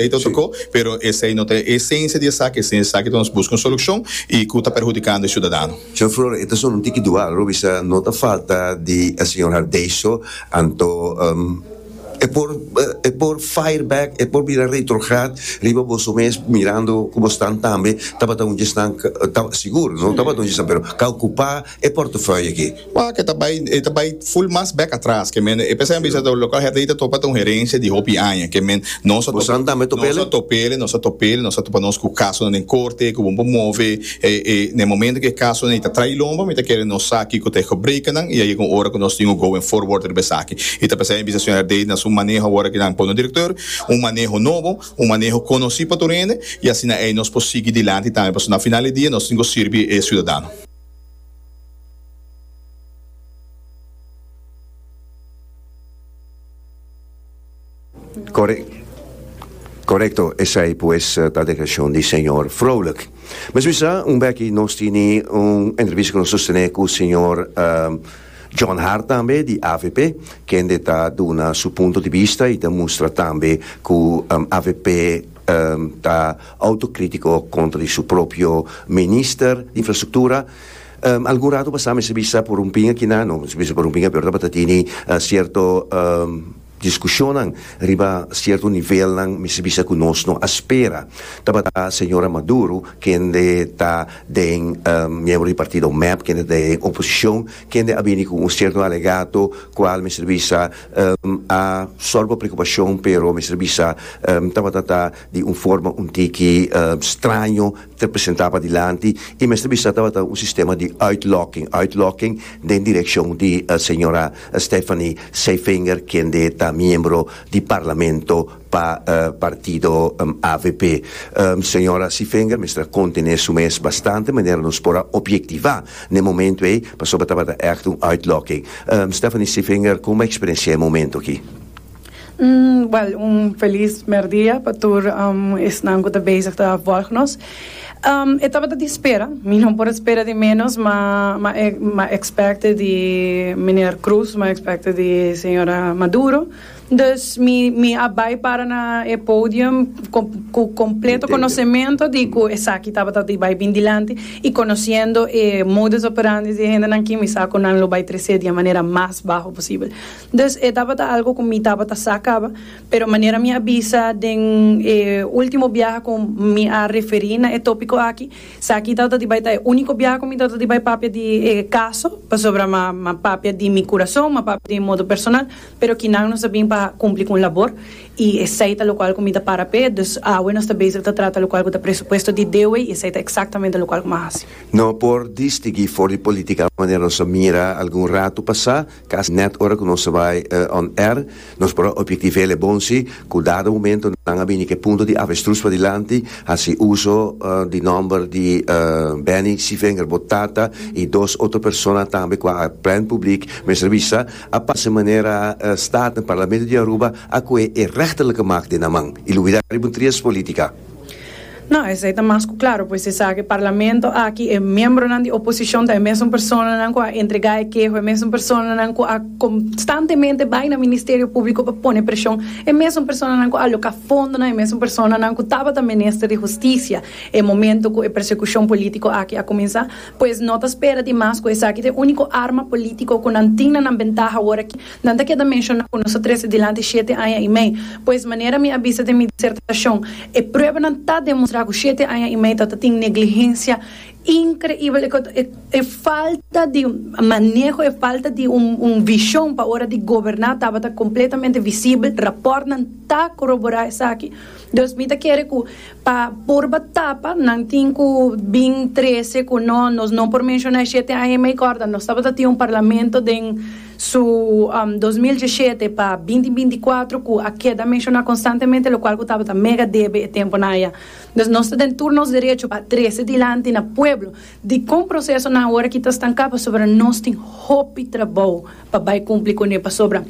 Ey ta otro co, pero esey no ta e esencia di esaki, e esencia di esaki ta nos busca un solucion y cu ta perhudicando e ciudadano. Señor Flores, e ta solo un tiki dual, lo bisa no ta falta di el señor Hardey so, anto e por e por fire back, e por bira retrograd riba boso mes mirando cu bo stan tambe tabata un djesnan sigur no tabata un djesnan pero ca ocupa. E portefeuille aki, wak e ta bai e ta bai full mas bek atras ke men e p'esei a bisa ta local herdei ta topa ta un herencia di hopi aña ke men no sa topa Bosan tambe top'ele? no sa top'ele no sa top'ele no sa topa nos ku casonan den corte ku bon por move e e n'e momento ke casonan ta trai lomba mi ta kere nos sa kiko ta e gebrekan nan i a yega un ora ku nos tin ku going forward riba esaki i ta p'esei a bisa señor herdei na su maneho awor ke nan pon nos director un maneho nobo un maneho konosí pa tur hende i asina ei nos por sigui dilanti tambe pasobra na final di dia nos tin ku sirbi e ciudadano. Corecto, esai pues ta declaracion di señor Vrolijk. Mesmo sa, un beki nos tini un entrevista cu nos sostene cu señor John Hart tambe di avp, kende ta duna su punto di bista y ta mustra tambe cu avp ta Autocrítico contra di su propio Minister di Infrastructura. Algun rato pasá mester bisa por un pinga kiná, no mester bisa por un pinga pero tabata tini cierto discusionnan riba cierto nivelnan mester bisa cu nos no a spera. Tabata señora Maduro kende ta den miembro di partido mep, kende ta den oposicion, kende a bini cu un cierto alegato cual mester bisa a solba preocupacion pero mester bisa tabata ta di un forma un tiki straño ta presentaba dilanti i mester bisa tabata un sistema di uitlokking, uitlokking den direkshon di señora Stephanie Zeifinger kende ta miembro di parlamento pa partido avp. Señora Zeifinger mester a kontené su mes bastante manera nos por a obyektivá n'e momentu ei pasobra tabata ègt un uitlokking. Stephanie Zeifinger, kon bo eksperensiá e momentu aki? Buen un feliz merdia pa tur esnan cu ta bezig ta volg nos. E tabata di spera, mi no por a spera di menos, ma m'a expecte di Meneer Croes, m'a expecte di Señora Maduro, dus mi mi a bay para na e podium cu completo conocemento di cu esaki tabata di bay bin dilanti y conociendo e modus operandi di e hendenan aki mi sa cu nan lo bay trece di e manera mas baho posible. Dus e tabata algu ku mi tabata sa kaba, pero manera mi a bisa den e último biaha ku mi a referí na e tópiko aki, esaki tabata di bai ta e úniko biaha ku mi tabata di bai papia di e kaso, pasobra mi a papia di mi kurason, mi a papia di mi modo personal, pero kinan nos a bin pa kumpli ku un labor i esei ta lokual ku mi ta para p'e, dus awe nos ta bezig ta trata lokual ku ta presupuesto di DOE i esei ta eksaktamente lokual ku mi a hasi. No por distigí for di polítika manera nos a mira algun ratu pasá. Cas net ora cu nos ta bay on air, nos por a obiecti vele bon si, cu dado momento nan a bini cu e punto di avestruz padilanti, haci uzo di nomber di Benny Civinger, bo tata, y dos otro persona tambe cua a plen public mester bisa, a pase manera Staten, Parlamento di Aruba, a coe e rechterlijke macht den nan man y lo wida riba un trias politica. No, esei ta mas ku klaru, pues esaki parlamento aki e miembronan di oposishon ta e mesun personanan ku a entregá e keho, e mesun personanan ku a konstantemente bai na Ministerio Públiko pa pone preshon, e mesun personanan ku a aloká fondonan, e mesun personanan ku tabata minister di hustisia e momento ku e persekushon polítiko aki a kuminsá. Pues no ta spera di mas ku esaki ta e úniko arma polítiko ku nan tin na nan bentaha awor aki. Nan ta keda menshoná ku nos a trese dilanti shete aña i mei. Pues, manera mi a bisa den mi disertashon, e pruebanan ta demostrá ku shete aña i mei ta ta tin neglihensia inkreibel, e falta di maneho, e falta di un vishon pa ora di goberná tabata kompletamente visibel. Rapòrtnan ta koroborá esaki. Dus mi ta kere ku pa purba tapa nan tin ku bin trese ku no, nos no por menshoná e shete aña i mei, kòrda nos tabata tin un parlamento den. su dos mil diesshete pa binti binti kuater ku a keda menshoná konstantemente lokual ku tabata mega debe e tempunan aya. Entonces nos ta den tur nos derecho pa trese dilanti na pueblo dikon prosesonan ora ki ta stanká pasobra nos tin hopi trabou pa bai kumpli kuné pasobra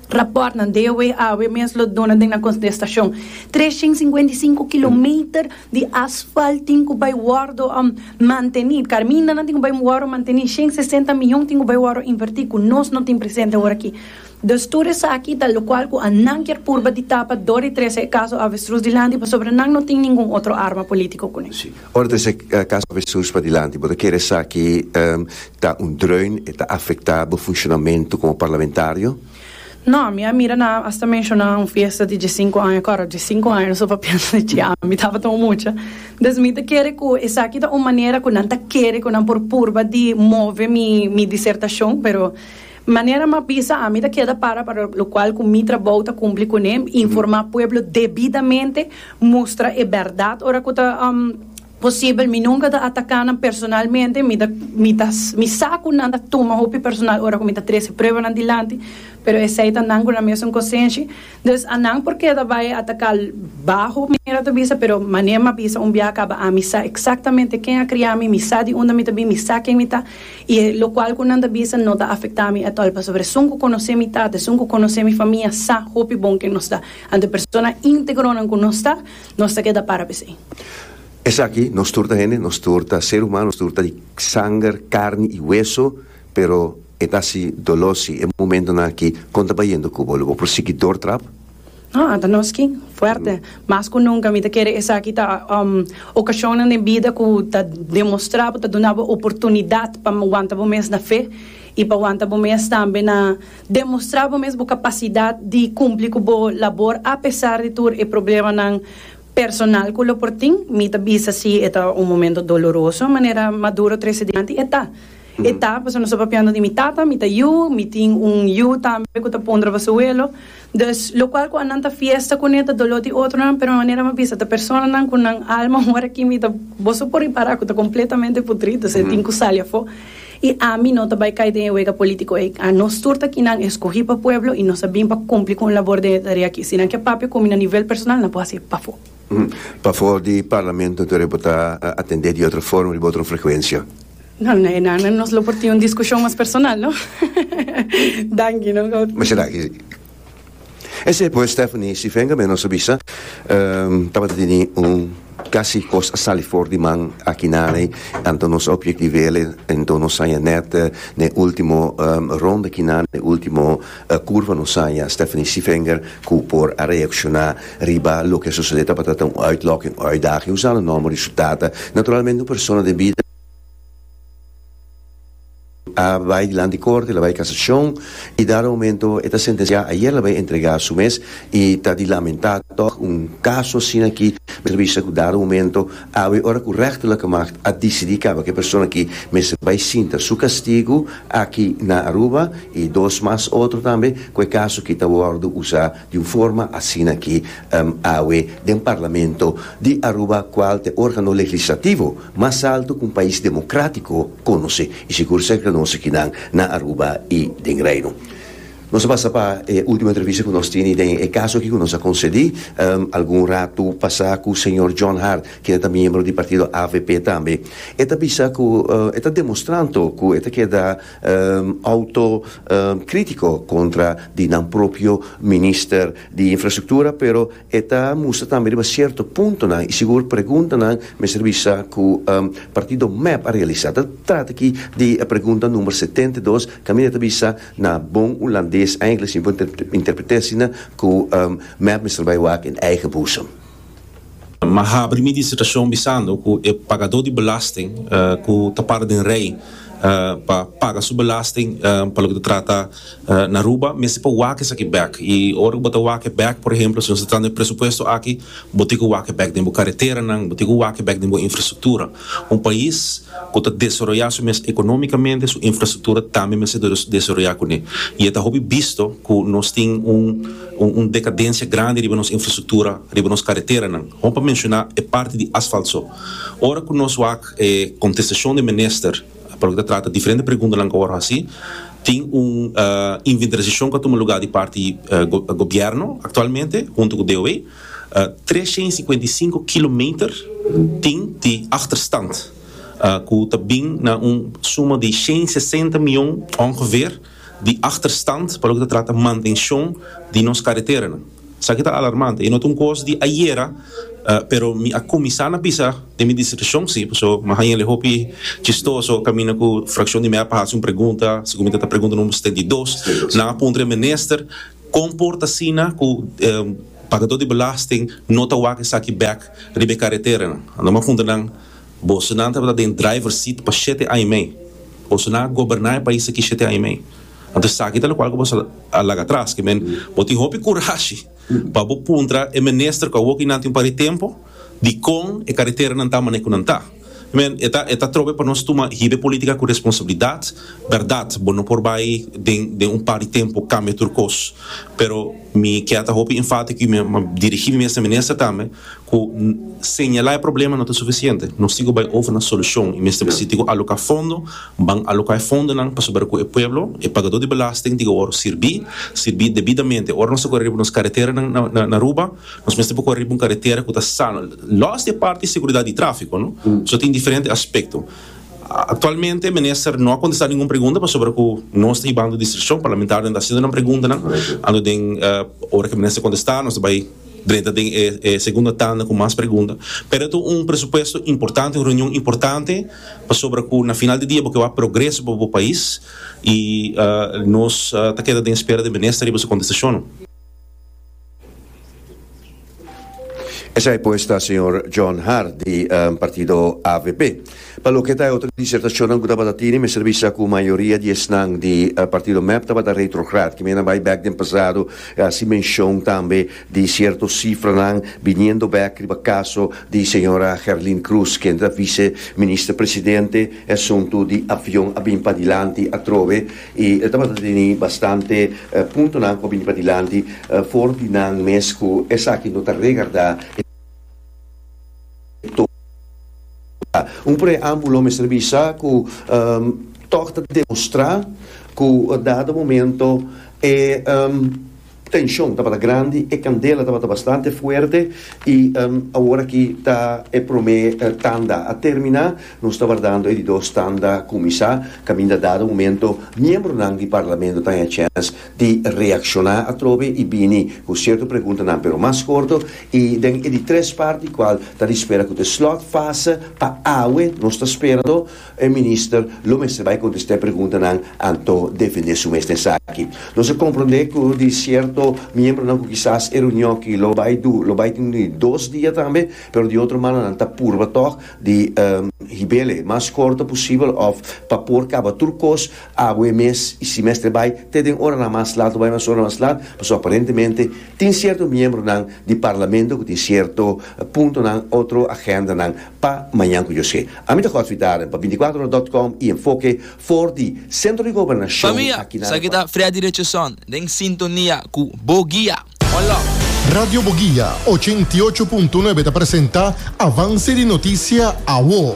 rapòrtnan DOW awe mes lo duna den na kontestashon tres shen singwenta i sinku kilometer di asfalt tin ku bai wòrdu manteni, karmindanan tin ku bai wòrdu manteni, shen sesenta miyon tin ku bai wòrdu invertí ku nos no tin presente ora aki. Dus tur esaki ta lokual ku a nan kier purba di tapa dor di trese e kaso avestrus dilanti pasobra nan no tin ningun otro arma polítiko kuné. Sí, ora trese e kaso avestrus padilanti bo ta kere esaki ta un dreun, e ta afektá bo funshonamentu komo parlamentario? No, mi a mira nan hasta menshona un fiesta di diesinku aña kor, diesinku aña so pa piensa di tjia, mi tabata un mucha, des mi ta kere ku esaki ta un manera ku nan ta kere ku nan por purba di move mi mi disertashon, pero manera mi a bisa ami ta keda para para lo kual ku mi trabou ta kumpli kuné, informá pueblo debidamente, mustra e bèrdat ora ku ta. Posibel mi nunka ta ataka nan personalmente, mi ta mi ta mi sa ku nan ta tuma hopi personal ora ku mi ta trese pruebanan dilanti, pero esei ta nan ku nan mesun konsenshi. Dus a nan por keda bai ataka baho mi manera ta bisa, pero manera m'a bisa un biaha kaba ami sa eksaktamente ken a kria mi, mi sa di unda mi ta bin, mi sa ken mi ta, i lokual ku nan ta bisa no ta afektá mi atòl, pasobra esun ku konosé mi tata, esun ku konosé mi famia sa hopi bon ken nos ta. Anto e persona íntegronan ku nos ta. Nos ta keda para p'esei. Esaki nos tur ta hende, nos tur ta ser humano, nos tur ta di sanger, carni y hueso, pero e ta si dolor si e momentonan aki. Con ta bayendo Cuba? Lo bo por sigui door trap? No, anta nos skin fuerte. Mas cu nunca mi ta kere esaki ta ocasionnan den bida cu ta demostra bo, ta duna bo oportunidad pa wanta bo mes na fe y pa wanta bo mes tambe na. Demostrá bo mes bo kapasidat di kumpli ku bo labor apesar di tur e problemanan personal ku lo por tin. Mi ta bisa si e ta un momento doloroso, manera Maduro trese dianti, e ta. E ta, pasobra nos ta papiando di mi tata, mi ta yu, mi tin un yu tambe ku ta pundra pa su welo. Dus, lokual ku a nan ta fiesta kuné ta doló di otronan, pero manera mi a bisa ta personanan ku nan alma ora aki mi ta boso por ripará ku ta kompletamente putrí, dus e tin ku sali afó. I ami no ta bai kai den e wega polítiko ei. Nos tur ta kinan eskohí pa pueblo i nos a bin pa kumpli ku un labor den e tarea akí. Si nan ke papia ku mi na nivel personal, nan por hasié pafó. Pafó di Parlamento tur e por ta atendé di otro forma, riba otro frekuensia. No, na e nan nos lo por tin un diskushon mas personal, no? Danki, no. Mashá danki. Esei pues Stephanie Sivenga me nos a bisa tabata teni un casi cos a sali for di man aki nan ei anto nos a objective'le anto nos saya net den ultimo ronda aki nan den ultimo curva nos saya Stephanie Sivenga cu por a reacciona riba loke a sucede tabata ta un uitlok un uitdaging usando nomber y su tata naturalmente un persona den bida a bai dilanti di korte, el a bai kasashon i dado momento e ta sentensiá, ayer el a bai entregá su mes i ta di lamentá tòg un kaso asina aki mester a bisa ku dado momento awe ora ku rèchterlijke magt a disidí kaba ku e persona aki mester bai sinta su kastigu aki na Aruba i dos mas otro tambe ku e kaso aki ta wòrdu usá di un forma asina ki awe den Parlamento di Aruba kual ta e organo legislativo mas alto ku un pais demokratiko konosé i sigur serka di nos akinan na Aruba i den Reino. Nos a pasa pa e ultimo entrevista ku nos tene den e kaso aki ku nos a konsedí algun ratu pasá ku señor John Hart kende ta miembro di partido avp tambe. E ta bisa ku e ta demostrando ku e ta keda. Auto critico contra di nan propio minister di infrastructura pero e ta mustra tambe riba cierto puntonan y sigur preguntanan mester bisa cu partido mep a realisa. Ta trata aki di e pregunta number setenta i dos caminda ta bisa na bon Hulandes, Engles y bo interpreter asina cu mep mester bay wak in eigen boezem. Ma habri mi disertashon bisando ku e pagadó di belasting ku ta para den rei pa paga su belasting pa loke ta trata na Aruba mester pa wak esaki bèk. I ora ku bo ta wak e bèk, por ehemplo, si nos ta trata den e presupuesto aki, bo tin ku wak e bèk den bo kareteranan, bo tin ku wak e bèk den bo infrastruktura. Un pais ku ta desaroyá su mes ekonómikamente, su infrastruktura tambe mester desaroyá kuné. I e ta hopi bisto ku nos tin un. Un decadencia grandi riba nos infrastructura, riba nos careteranan. Hon pa menciona e parti di asfalt so. Ora cu nos wak e contestacion di e Minister pa loke ta trata diferente preguntanan cu a wor haci, tin un inventarisacion cu a tuma lugar di parti di Gobierno actualmente hunto cu DOW. Treshent i sikuenta i sinku kilometer tin di achterstand cu ta bin na un suma di shent i sesenta mion ongeveer. di achterstand pa loke ta trata mantenshon di nos kareteranan. Esaki ta alarmante, e no ta un kos di ayera, pero mi a kuminsá na bisa den mi distrikshon si, pasobra mi a haña'l hopi chistoso kaminda ku frakshon di mea pa hasi un pregunta, si ku mi ta ta pregunta number setenta i dos, nan a puntra e minister kon por ta asina ku pagadó di belasting no ta wak esaki bèk riba e kareteranan. Anto mi a puntra nan. Bosonan tabata den driver seat pa shete aña y mei. Bosonan a goberna e pais aki shete aña y mei. Anto esaki ta lokual ku bo sa a laga atras. Ke men, bo tin hopi kurashi pa bo puntra e minister ku a wok hinanti un par di tempu dikon e kareteranan ta manera ku nan ta. I mean, e ta e ta trobe pa nos tuma hide politika ku responsabilidat. Bèrdat, bo no por bai den den un par di tempu kambia tur kos. Pero mi ke a ta hopi enfátiko y mi a dirigí mi mes na minister tambe. Ku señalá e problema no ta sufisiente, nos tin ku bai ofri nan solushon i mester bisita ku aloká fondo. Ban aloká e fondonan pasobra ku e pueblo, e pagadó di belasting, tin ku wòrdu sirbí, sirbí debidamente. Ora nos ta kore riba nos kareteranan na Aruba, nos mester por kore riba un karetera ku ta sano, lòs di e parti di seguridat di tráfiko, no? So tin diferente aspekto. Aktualmente minister no a kontestá ningun pregunta pasobra ku nos ta hibando distrikshon, parlamentarionan ta hasiendo nan preguntanan, anto den ora ku e minister kontestá nos ta bai. Drenta den e e segunda tanda ku mas pregunta. Pero e ta un presupuesto importante, un reunion importante pasobra ku na final di dia bo ke wak progreso pa bo pais i nos ta keda den spera den minister riba su kontestashonnan. Esei pues ta señor John Hart di partido avp. Pa loke ta e otro disertacionnan cu tabata tine, mester bisa cu mayoria di esnan di partido mep tabata retrograd. Kimen a bay bek den pasado a haci mencion tambe di cierto cifranan biniendo bek riba caso di señora Gerlin Cruz, ken ta vice Minister Presidente. E asunto di avion a bin padilanti atrobe y tabata tene bastante puntonan cu a bini padilanti for di nan mes cu esaki no ta regarda. tur ta un preámbulo mester bisa ku tòg ta demostrá ku e dado momento e tenshon tabata grandi e kandela tabata bastante fuerte i awor aki ta e promé tanda a terminá nos ta wardando e di dos tanda kuminsá kaminda dado momento miembronan di parlamento ta na e chèns di reakshoná atrobe i bini ku sierto preguntanan pero mas korto i den e di tres parti kual ta di spera ku ta e slòtfase pa awe nos ta spera lo e minister lo mester bai kontestá e preguntanan anto defendé su mes na esaki. Nos a komprondé ku di sierto miembronan ku kisas e reunion aki lo bai du lo bai tin di dos dia tambe pero di otro mano nan ta purba tòg di hib'el e mas korto posibel òf pa por kaba tur kos Awe e mes y simestre bay te den oranan mas laat o bay mas oranan mas laat pasobra aparentemente tin cierto miembronan di Parlamento cu tin cierto puntonan otro agendanan pa mañan cu yo sey. Ami ta Godfrey Daren pa binticuatro ora dot com y Enfoke for di Centro di Gobernacion aki na Arequipa. Radio Boguia ochenta i ocho punto nuebe ta presenta Avance di noticia, awo.